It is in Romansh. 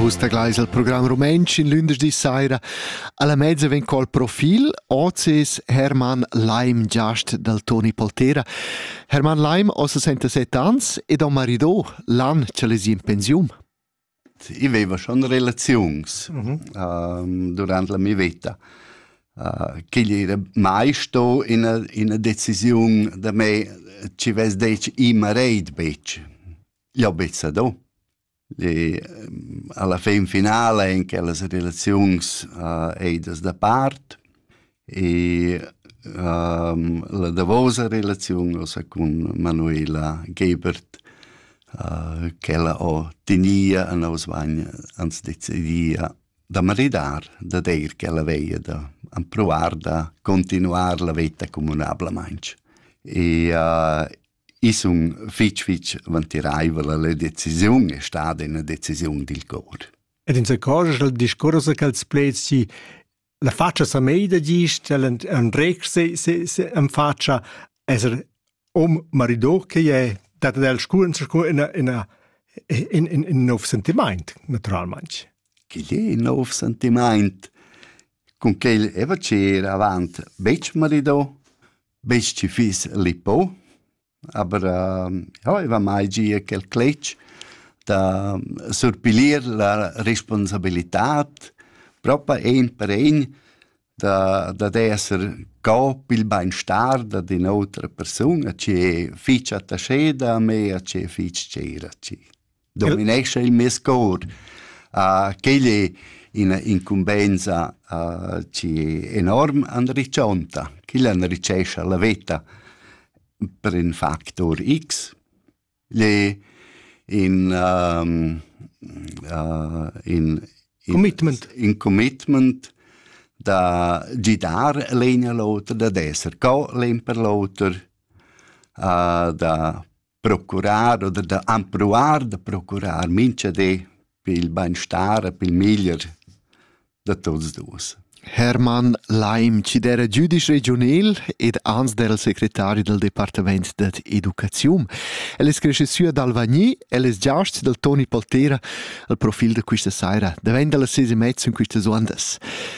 Vus tagleis il program rumentsch in lündeschdi saira. Alla mezza vegn col profil Ozis Hermann Leim Giast dal Toni Poltera. Hermann Leim ha 67 ans ed ha un marido, l'an ch'el es in pensiun. Ich veva schon relazions mhm. uh, durant la mia vita. Uh, Ch'igl era mai sto ina, ina decisiun da me ci vess detg i mareid betg. Jau bezza do. Alla fin finala en che las relaziuns uh, ei das da part e um, la davosa relaziun ossa cun Manuela Gebert uh, ch'ella ho tenia a nos bagn ans decidia da maridar da deir che la veia da provar da continuar la veta comunablamaintg. E uh, I sun fich fich vantiraivel la decisiun e stada üna decisiun dil cor. Ed insacorgia il discurs che els pleds si la faccia sa mei da gist, el en rec se se se en faccia eser om marido che è dat del scuren scu in in in in in nov sentiment naturalmente. Che è nov sentiment? Con quel eva c'era avant bec marido? Besch chi fiss lippo, aber jau aiva mai gia quel cletg da surpilir la responsabilitad propa ein per ein da dad esser co pil beinstar dad in'otra persuna chi è fich attascheda a me a chi è fich tschera a chi. dominescha il mes cor. Uh, quel è ina incumbensa uh, enorm anriccionta, quel anricescha la veta per in factor X. Le in, um, uh, in, in commitment. in commitment da gidar l'egna l'otra, da esser co l'en per l'oter, uh, da procurar oder da empruar da procurar mincha di per il bainstar e per il meglier da tuots duos. Hermann Leim, ci d'era giudisch regionel ed ans d'era secretari del departament dad educaziun. El es cresce sü ad Alvagni, el es giast dal Toni Poltera al profil da quista saira, davent dalla ses e mezzo in quistas ondas.